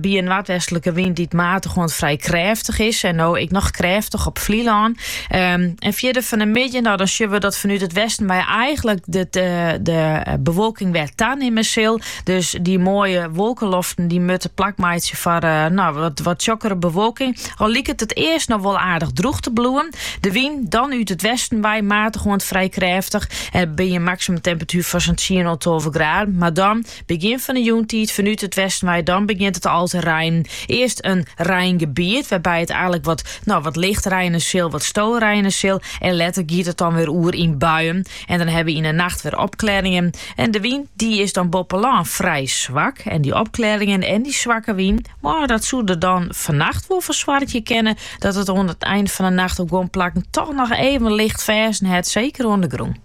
By in noardwestlike wyn dy't matich oant frij krêftich is en no ek noch krêftich op Flylân. Ehm, en fierder fan de middei, no dan sjogge we dat fanút it westen wei eigenlik de, de, de bewolking wer tanimme sil. Dus dy moaie wolkeloften dy moatte plak meitsje foar eh, no, wat, wat tsjokkere bewolking. Al liket it earst noch wol aardich droech te bliuwen. De wyn dan út it westen wei matich oant frij krêftich. En by in maksimumtemperatuer fan sa'n 10 oant 12 graden. Mar dan Begjin fan 'e jûntiid fanút it westen wei, dan begjint it al te reinen. Earst in reingebiet, wêrby't it eigenlik wat, no, wat licht reine sil, wat storeine sil, en letter giet it dan wer oer yn buien. En dan hawwe wy yn 'e nacht wer opklearringen. En de wyn, dy is dan boppe lân frij swak. En dy opklearringen en dy swakke wyn, moh, dat soe der dan fannacht wol foar soargje kinne dat it oan it ein fan 'e nacht op guon plakken toch noch even licht ferzen hat, seker oan de grûn.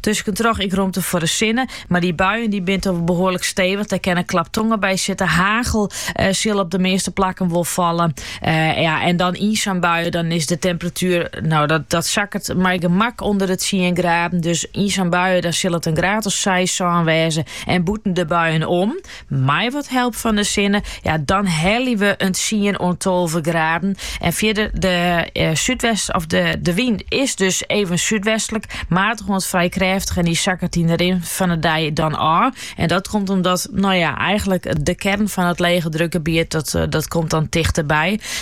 Tuskentroch ek romte foar de sinne, mar dy buien dy binne al behoarlik stevich. Dêr kin in klap tonger by sitte. Hagel sil op de measte plakken wol falle. Ja, en dan yn sa'n bui dan is de temperatuer, no dat, dat sakket mei gemak ûnder de tsien graden. Dus yn sa'n bui dan sil it in graad of seis, sân wêze en bûten de buien om. Mei wat help fan de sinne, ja, dan helje we in tsien oant tolve graden. En fierder de eh, súdwest, of de, de wyn is dus even súdwestlik, matich oant frij krêftich. En dy sakket yn de rin fan de dei dan ôf. En dat komt omdat, no ja, eigenlik de kearn fan it legedrukgebiet, dat, eh, dat komt dan tichterby.